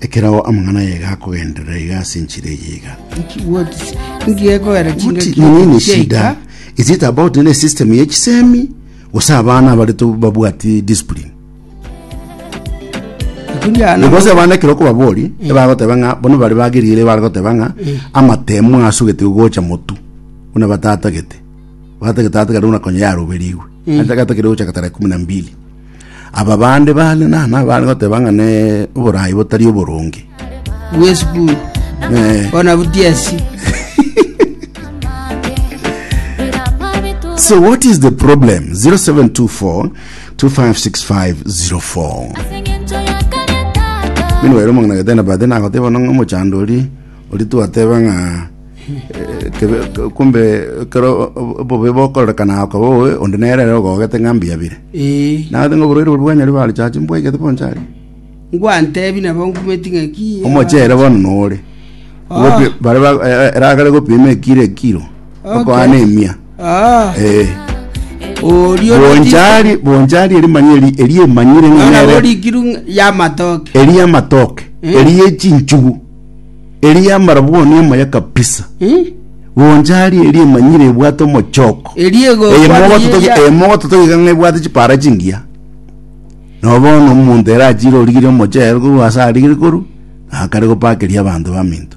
Ekerao amang'ana aye gakogenderera iga ase enchera eye iga. What is- ngekogera What chingaki is- nini ni chiaika? shida? Is it about nene system ye chisemi? Gose abana abare to babwati discipline. Kundi ano- Because abana ekero kobabori, ebagoteba ng'a bono bare bageriere bare goteba ng'a amatemo asugete gocha motu. Buna batatagete. Batatagete atigare buna konya yaroberigwe. Atatagete gocha tara kumi na mbili. Aba bande bare nana bare goteba ng'a ne oboraai botari oboronge. Bw'esukuru, Eh. bono butiasi. So what is the problem? 0724 256504. Mino wero mong'ina getena bade nagoteba nong'o mochandori Oria twateba ng'a eh, kebe, kumbe ekero obobe bokorekana ako bobe onde nere ere ogogete ng'a mbuya bire Ee. nagete ng'a oborwaire boria bwanyari barechachi mbwaigete bonsi aria Ngwantebi nabo nkumeti ng'aki. omochere bono nore Ah. Gopi- bare ba- eh, eh, eragare gopima ekiro ekiro Okay. okoana emia Ah. Eh. Orio bonchari bonchari erimanya eri eri emanyire ng'a Nona nere borikiru ya matoke. eri amatoke Eh. eri echinchugu Eria yamara bono emoya kabisa. Goncha aria eria emanyire ebwate omochoko. Eria egokwa Eye mogoto niye toki- ya- eye mogoto tokiga ng'a ebwate chipara chingiya. Nabo bono omonto ere achire origirie omochere korwa ase arigire korwa, akare gopakeria abanto baminto.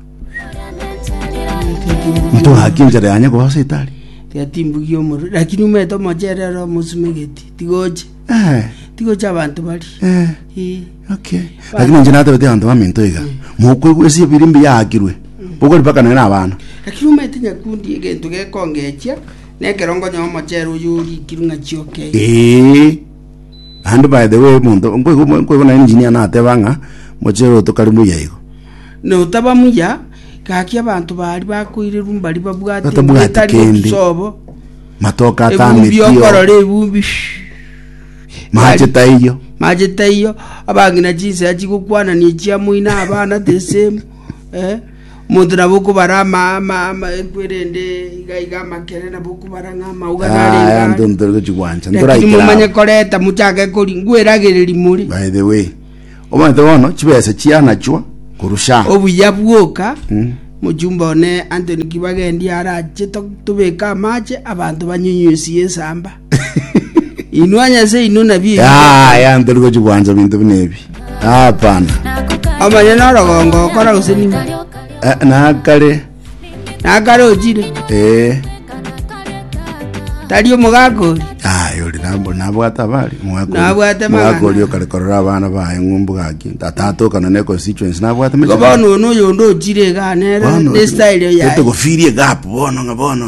Ntogaki enchera yanye korwa ase etari. tiatimbugia omoro lakini omanyete omochere oro omosumegetie tigocha Eh, tigocha abanto baria eh. Ii. Okay. Lakini inche natebete abanto baminto iga, mokwegwa ase ebiri mbiyaakirwe, bokori mpaka nere abana. Lakini omanyete nyakundi egento gekongechia nekero nkonyaa omochere oyo orikirwe ng'a chiokei Ee. And by the way, monto, nkwego, nkwego na engineer nateba ng'a, mochere otokari muya igo. notaba muya gaki abanto bari bakoireru mbari babwate Batabwati ebitari kende. otusobo Matoka ebumbi atameti okorora ebumbi shhh. Maache taiyo. Maache taiyo, abang'ina chinsea chigokwanania echiamoina abana the same. Eh? Omonto nabo okobara ama ama ama ekwerende iga iga amakere nabo okobara ng'a amauga Ah, narenge anto ano. ntori gochigwancha. Lakini Ntoraikera. momanye koreta mochake kori ngweragereri more. By the way. Omanyete bono chibesa chianachwa korwa Sham. Obuya bwoka, mochumba one Anthony Kibagendi arache to- tobeke amache abanto banyunyusie ensamba. Inwe anyase inwe nabio ebi Ah, gokora. ya ntari gochi gwanza bintu bine ebi. Hapana. Omanye norogongo okora gose nigo. Eh, nakare nakare ochire Eh, tari omogaka ori aye ori nambo nabwate abari Nabwate amang'ana. mwakori okare korora abana baye ng'umbu gaki atatokana ne constituency nabwate igo mechando. bono one oyonde ochire iga nere ne style yaye togofirie gap bono ng'a bono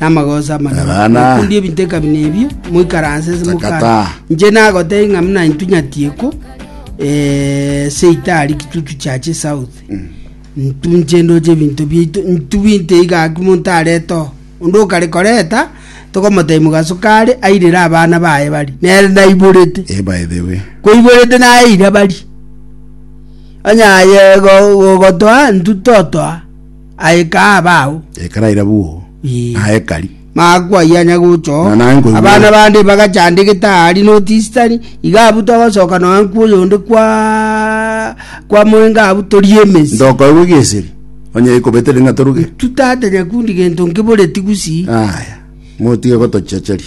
namagooso amanene. Abana. Mokunde ebinto ekabina ebio, moikaranse ase Takata. mokare. Inche nagotebia ng'a buna intwe nyatieko, eh, seita aria kitutu chiache south. Ntunche ndoche ebinto biaito, ntubinte iga aki monto arete oo. Onde okare koreta, tokomotebia mogaso kare, airere abana baye baria. Nere naiborete Eh, by the way. koiborete naeire bari onye aye go- gogotoa ntutotoa Aye kaa bao. Ekaraira bwo. Ii. Na ekari. Makwa aya nyagocho. Na naye nkoigwa. Abana bande bagachandegete ahari notisitari, iga abwo togosoka nonya nkwa oyonde kwa kwa moenga abwo torie emesi. Ndokoigwa egeseri. Onye ikobetere ng'a toruge. Tutatanya kundi gento nkiboreti gusi. Aya. Motige gotochecheria.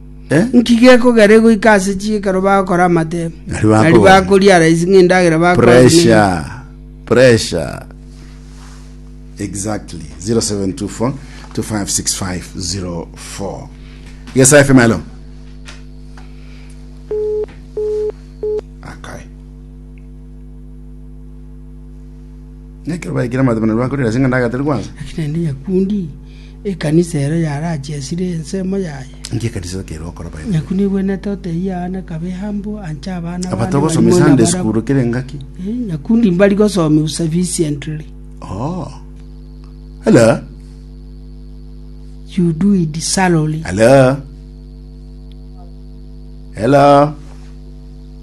Nki gekogera goika ase chiikaro bagokora amatemo? Nari bakogora. Nari bakoria araisi ng'a endagera bakogora neye. Pressure. Pressure. Exactly. 0724 256504. Yes, FM, hello. Akai. Nekero baikira matemo nari bakoria araisi ng'a ndagateri kwanza. Lakini ende nyakundi Ekanisa ero yarachesire ensemo yaye. Inki ekanisa ero kerwe gokora baye? Naki nigwenete otebie aa nakabe humble anche abana Aba bande togosomia barimo Sunday nabarabwo. school kera engaki. Eh, nyakundi mbari gosomia sufficiently Oh. Hello. you do it salary Hello. Hello.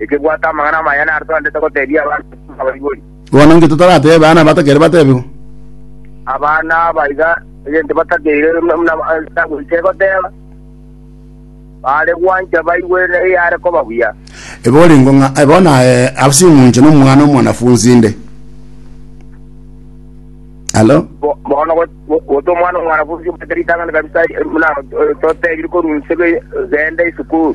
ekebwate amang'ana amaya naro togantete goteebia abanto abaibori. Bono inki totorateebe aana batakeire batebigwa? Abana aba iga egento batakeire buna Etabu egoteba, baare gwancha baigwe eyare koba buya. Ebe oringo ng'a aye bono aye ase eng'uncho nomwana omwanafunsi inde. Halo? Bo- Bono go- go- gote omwana omwanafunsi omanyete ritang'ani kabisa buna toteebiri korwa inse be- genda esukuru.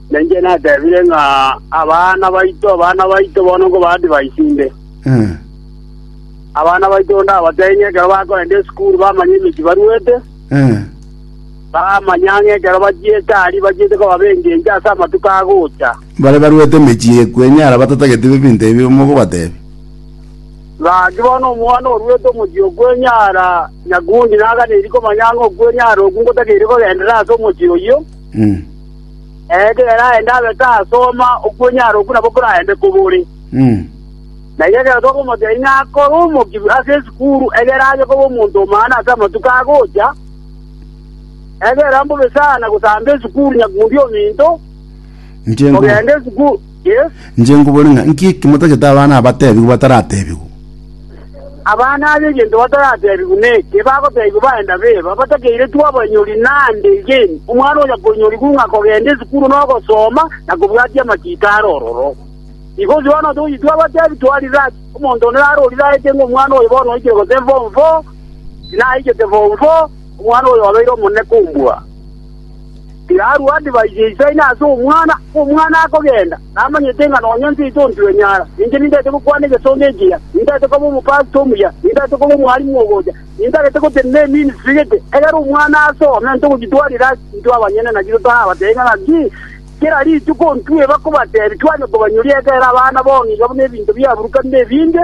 Na inche nateebire ng'a abana baito, abana baito bono nkobaa divai inde. Abana baito ndabatebie ng'a ekero bakorenta esukuru bamanye emechie baruete, bamanya ng'a ekero bachiete aria bachiete koba b'engencho ase amatuko agocha. Bare baruete emechie ye kwenyara batatageti ebinto ebio mogobatebia. Gaki bono omwana oruete omochie o kwenyara, nyakundi naganeiri komanya ng'a okwenyara okwo ngotakeire kogenderera ase omochie oyio. Ekero aende abe tasoma okwenyara okwo nabo koraende kobore. Na igo ekero tokomotebia ng'a akore omokibi ase esukuru, egere aye koba omonto omana ase amatuko agocha, egera mbobe sana gosamba esukuru nyakundi ominto, ogende esukuru. Inche nkobore ng'a nki eki motagete abana abatebigwe bataratebigwe? Abana aba egento bataratebigwe neke, bagotebigwa baenda beba, batakeiretwe abanyori naende egeni, omwana oyo akonyorigwa ng'a kogenda esukuru na ogosoma, na kobwatia amachiko are ororo. Igo onsi bono togoyitwa abatebi twarire ase omonto onde nare oriraete ng'a omwana oyo bono oikire gose form four, tinaikete form four, omwana oyo obeire omonene kombua. Tirarua divai yeisaine ase omwana, omwana akogenda, namanyete ng'a nonya inche inche ontirenyaara. Inche nintagete gokwana egesongo ekiya, nintagete koba omopasiti omuya, nintagete koba omwalimu ogocha, nintagete gotenena eministiri gete. Egera omwana asome, ntogokitwarera ase intwe abanyene, naki totarabatebi ng'a ng'aki. Kera rituko ntweba kobatebi, twanyia kobanyoria ekeene abana b'oong'ina buna ebinto biaburukanire ebinge.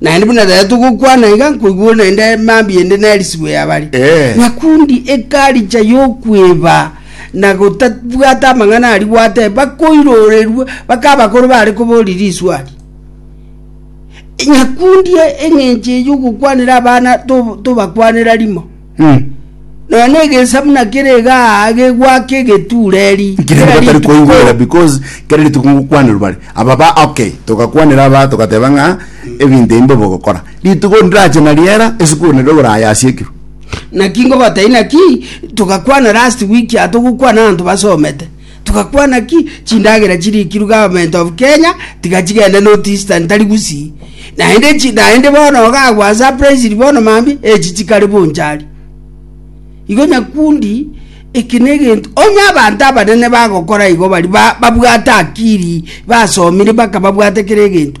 Naende buna tari togokwana iga, nkoigwa naende mambia ende nerisibwe y'abare. Eh. Nyakundi ekaricha y'okweba na gotabwata amang'ana ari gwate, bakoirorerwa baka abakoro bare koboria riswari. Nyakundi eng'encho ey'ogokwanera abana to- tobakwanera rimo. Mm. Nonya negensa buna kere iga aa gegwake egetureri. Kere Kera batari rituko- koigwera because kere rituko ngokwanirwa bare aba ba okay togakwanera aba togateba ng'a ebinto ebi mbobe ogokora rituko ndirache na riera esukuru nere ogoraya ase ekiro naki ngobatai naki togakwana last week aa togokwana abanto basomete Togakwana ki chindagera chirikirwe government of Kenya tiga chigende North Eastern tari gusii. Naende chi naende bono ogagwa surprised bono mambi echi chikare bonchari. Igo nyakundi eke negento onye abanto abanene bagokora igo bari ba, babwate akiri basomire bakababwate kere egento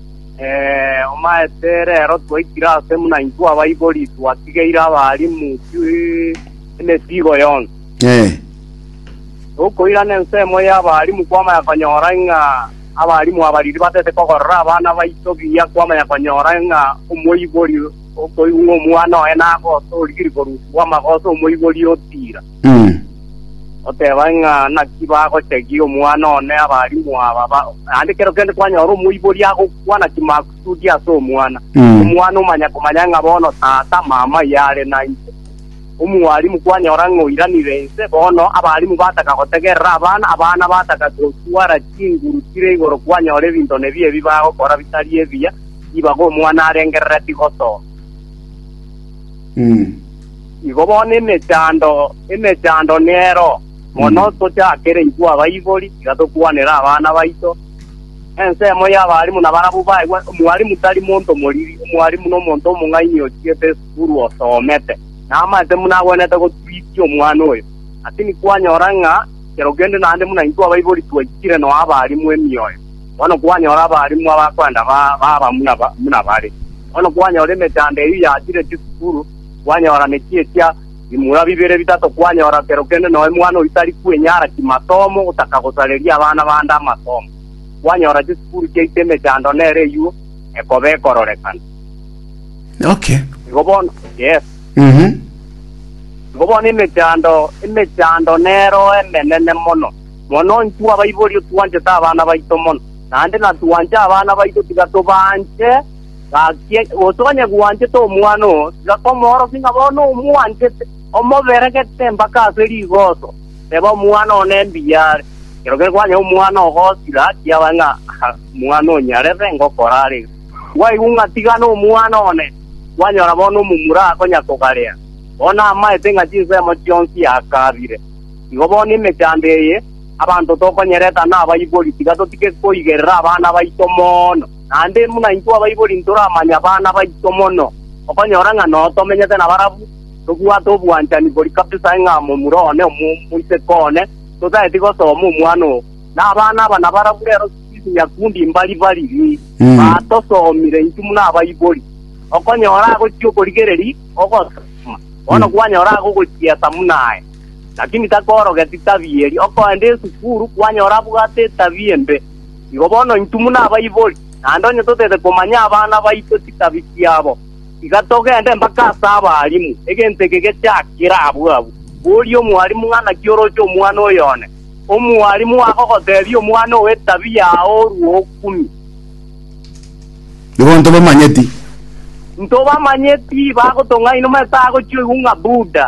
Omaete rero twaikire aase buna intwe abaibori, twatigeire abaalimu emesiigo yonsi. Tokoirana ensemo y'abaalimu kwamanya konyora ng'a abaalimu aba riria batete kogorera abana baito buya, kwamanya konyora ng'a omoibori okoigwa ng'a omwana oye nagosa, origire korusigwa amagoso, omoibori otiira. Mm. Oteba ng'a naki bagochagia omwana one abalimu aba ba- naende kero kende kwanyora omoibori agokwana chimakusudi ase omwana. Mm. Omwana omanya komanya ng'a bono tata mama yare na inche. Omwalimu kwanyora ng'a oiranire inse, bono abalimu bataka gotegerera abana, abana bataka gotwara chinguru chire igoro kwanyora ebinto nebio ebi bagokora bitari ebiya, ribaga omwana arengerereti gosoa. Mm. Igo bono emechando, emechando nero mono tochakereigwe abaibori, tiga tokwanere abana baito. Ensemo y'abarimu nabarabwo baegwe, omwarimu tari monto moriri, omwarimu nomonto omong'aini ochigete esukuru osomete. Namaete buna agwenerete gotwisia omwana oyo. Lakini kwanyora ng'a kero kende naende buna intwe abaibori twaikire noa abarimu emioyo, bono kwanyora abarimu abakorenda baba buna bare. Bono kwanyora emechando eyio yachire chisukuru, kwanyora nechiechia bimura bibere bitato, kwanyora kero kende noe mwana oyio tari kwenyara chimasomo, gotaka gosareria abana bande amasomo. Kwanyora chisukuru chiaito emechando nere eyuo ekoba ekororekana. Okay. Igo bono, yes. Mhm. Igo bono emechando, emechando nero emenene mono. Mono intwe abaibori otwanchete abana baito mono, naende natwanche abana baito tiga tobanche, Gaki, gose onye gwanchete omwana oo, tiga komoorokia ng'a bono omwanchete, omoberegete mpaka ase rigooso, teba omwana oo nembuya are. Ekero kwanyora omwana ogosira, kiabae ng'a omwana oo nyarebe ngokora are iga. Gwaigwa ng'a tigana omwana one, kwanyora bono omomura akonyakogaria, bono amaete ng'a chinsemo chionsi akaabire. Igo bono emechando eye, abanto tokonyereta nabaibori, tiga totike koigerera abana baito mono. Naende buna intwe abaibori ntoramanye abana baito mono, okonyora ng'a noo tomenyete nabarabwo, tobwate obwanchani bori kabisa ng'a momura one omoiseke one, totaeti gosoma omwana oo. Na abana aba nabarabwo rero Swiss nyakundi mbari bariri, batosomire intwe buna abaibori. Okonyora agochia okorigereria ogosoma, bono kwanyora age ogochiesa buna aye, lakini takorogeti tabia eria. Okoenda esukuru, kwanyora abwate etabia embe. Igo bono intwe buna abaibori, naende onye totaete komanya abana baito chitabi chiabo, tiga togende mpaka ase abaalimu, egento eke gechiakire abwo abwo. Boria omwalimu ng'a naki oroche omwana oyo one. Omwalimu agogoteebia omwana owe etabi yao orue okumi. Nigo ntobamanyeti. Ntobamanyeti, bagotong'aina omanyete agochioigwa ng'a Buddha,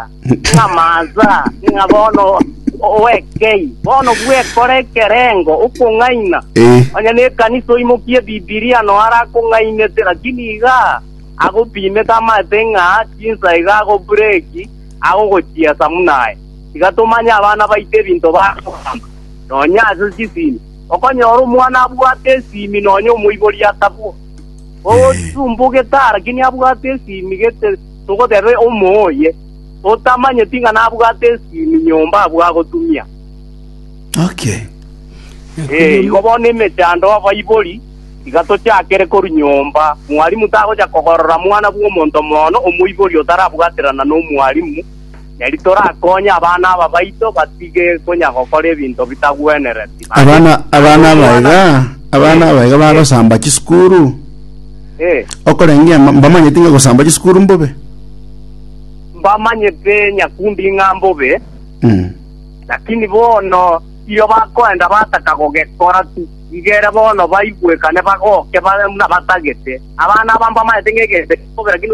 ng'a Maza, ng'a bono oekei, bono bwekora ekerengo okong'aina. Eh. Onye nekanisa oimokie Bibilia no arakong'ainete, lakini iga agopimete amanyete ng'a chinsa iga agobureki agogochiesa buna aye. Tiga tomanye abana baito ebinto bakogamba, nonya ase chisimi. Okonyora omwana abwate esimi nonya omoibori atabwo. Ogotumba ogetara kinia abwate esimi gete togoteba omoo oye, otamanyeti ng'a nabwate esimi nyomba abwo agotumia. Okay. Ee, igo bono emechando y'abaibori tiga tochakere korwa nyomba. Mwalimu tagocha kogorora mwana bw'omonto mono omoibori otarabwaterana nomwalimu, na eri torakonye abana aba baito batige konya gokora ebinto bitagwenereti. Aye, Abana abana aba iga nagokwana- abana aba iga bagosamba chisukuru Eh, okorengea ma- mbamanyeti ng'a gosamba chisukuru mbobe. mbamanyete nyakundi ng'a mbobe, Mm. lakini bono iyo bakoenda bataka gogekora tu, iga ere bono baigwekane bagoke bare buna batagete. Abana aba mbamanyete ng'a egento kimobe, lakini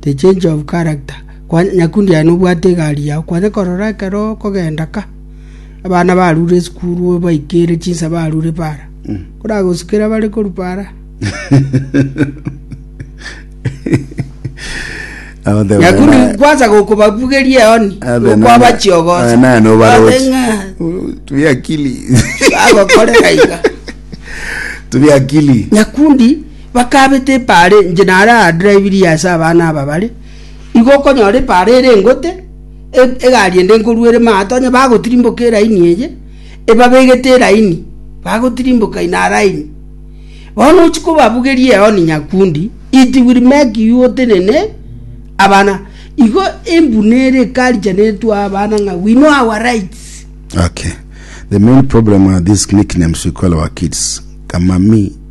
The change of character. Kwa, nyakundi aye nobwate egari yao, kwanya korora ekero okogenda ka, abana barure esukuru obaikere chinsa barure para. Mm. Oragosikera bare koru para. Abate Nyakundi bana- kwanza gokobabugeria eoni, Abe nana- gokwabachiogosa. abe nana obarochi. Abe ng'a, tubi akili bagokorera iga. tubi akili Nyakundi Bakabeta epaara enche naro aadrivirie ase abana aba bare, igo okonyora epaara ere engote, egari ende nkorwa ere maato, onye bagotirimboka eraini eye, ebabegete eraini, bagotirimboka in a line. Bono ochia kobabugeria eoni nyakundi, it will make you otenene abana. Igo embuna ere ekarichaneretwe aa abana ng'a we know our rights. Okay. The main problem are these nicknames we call our kids. Kamami.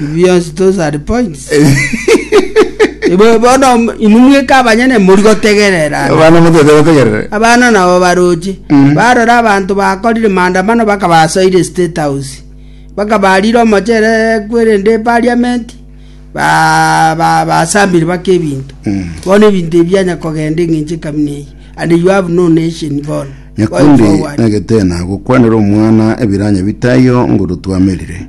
Bionsi those are points. Ibo bono inwe mweka abanyene mori gotegerera. Abana motete bategerere. Abana nabo baroche mm. barora abanto bakorire maandamano bakabasoire state house bakabarire omochere kwerende parliament ba ba basambire bake ebinto mm. bono ebinto ebianya kogenda eng'enche kamina eyi and you have no nation bono nyakundi nagetena gokwanera omwana ebiranya bitayo ngoro twamerire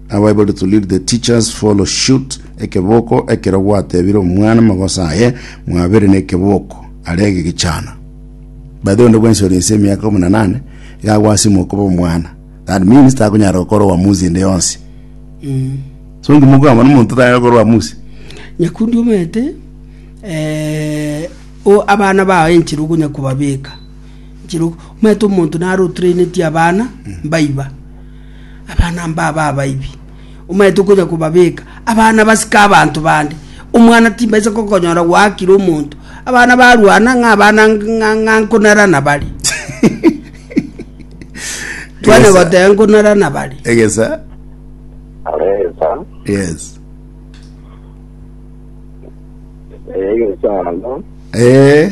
Now able to lead the teachers follow shoot ekeboko ekero gwatebire omwana magoso aye mwabere ne ekeboko arege gechana by the way onde bwensi ore inse emiaka kumi na nane iga agwasima okoba omwana that means takonyara gokora oamuzi ende yonsi so ngima okwama nomonto tanyara gokora oamuzi nyakundi omanyete eh, o abana bao enchera okonya kobabeka enchera ok- omanyete omonto naro otrainetie abana mbaiba Abana mbabo abaibi, omanyete okonya kobabeka abana basike abanto bande. Omwana timbaisa gokonyora gwaakire omonto, abana barwana ng'a abana ng'a nkonara nabare. Twana goteba nkonara nabare. Egesa. Aresa, Yes. egesano, Eh.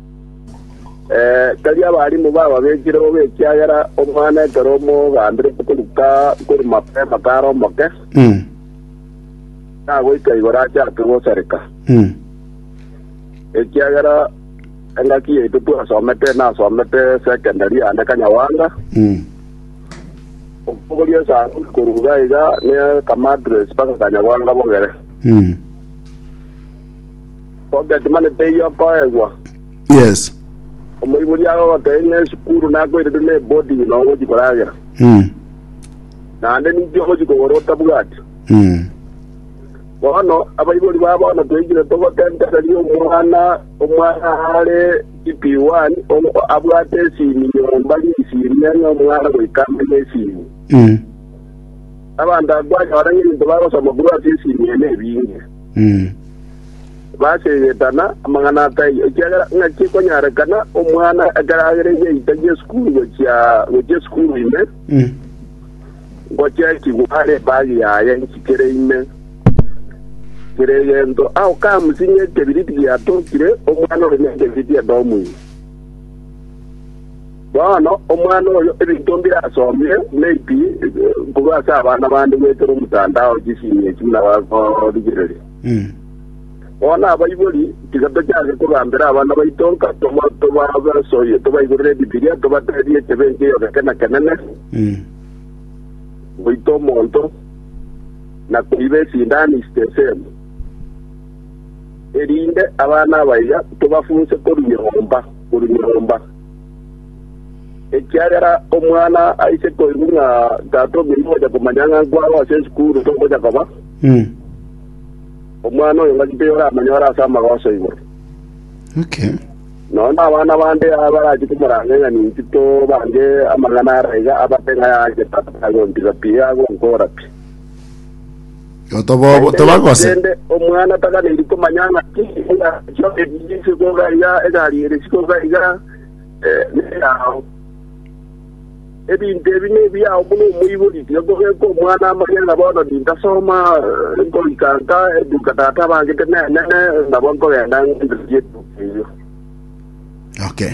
Eh, tari abarimu bababekire bobe, ekiagera omwana ekero omogambire koruka kori mapema kare omoke, Mm. nagoika igoro achake gosareka. Mm. Ekiagera engaki yaito twasomete, nasomete secondary ande Kanyawanga, Mm. okogoria esano koruga iga ne kamadres mpaka Kanyawanga bogere. Mm. Pocket money teiyo okoegwa. Yes. Omoibori agogotebia ng'a esukuru nakoirete na eboarding na ogochi koragera. Mm. Naende ninki ogochi kogora otabwati. Mm. Bono abaibori ba bono toikire togotentereria omwana omwana are CP1 o- abwate esimi nyomba risimi ng'a omwana goika amenye esimi. Mm. Abanto akwanyora ng'a ebinto bagosoma korwa ase esimi ene ebinge. Baseegetana amang'ana a taiyo, ekiagera ng'aki ekonyarekana omwana ekero agere geita gi'esukuru gochia gochia esukuru ime, ngochechigwa are ebagi yaye nchikere ime. Kera egento ao kamusi ng'a ekebiriti giatokire, omwana ore nekebiriti edomu ime. Bono omwana oyo ebinto mbirasomire, maybe korwa ase abana bande goetera omotandao chisinyo echio buna bagorigereria. Bono abaibori, tiga tochake kogambera abana baito nka toba- tobabasoyie, tobaiborere Ebibilia, tobateebie echebe enchia eyogekena kenene, goita omonto, na koiba esindani is the same. Erinde abana abaiga tobafunse korwa nyomba korwa nyomba. Ekiagera omwana aise koigwa ng'a tata ominto ogocha komanya ng'a nkwao ase esukuru togocha koba, Mm. omwana oyo ngaki toyoramanya ore ase amagoso igoro. Okay. Nonya abana bande abarachi komoranga ng'a ninki tobange amang'ana ara iga abate ng'a yache tata agontira pi, agonkora pi. Tobobo- tobagose. Naende omwana taganeri komanya ng'aki engacho eria ase koga iga, egari ere ase koga iga, eh, neyao. Ebinto ebi nebiao buna omoibori, tiga kogeka omwana amanye ng'a bono nintasoma, eh, nkorika nka eduka tata abangete nenene, nabo nkogenda ng'ende chieduka eyio. Okay.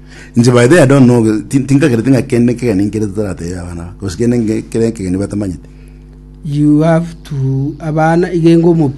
Inche by the way I don't know ti- tinkagerete ng'a kende kegeni nkere totaratebia abana ba- gose kende nge- kere kegeni batamanyete You have to abana igenga omopira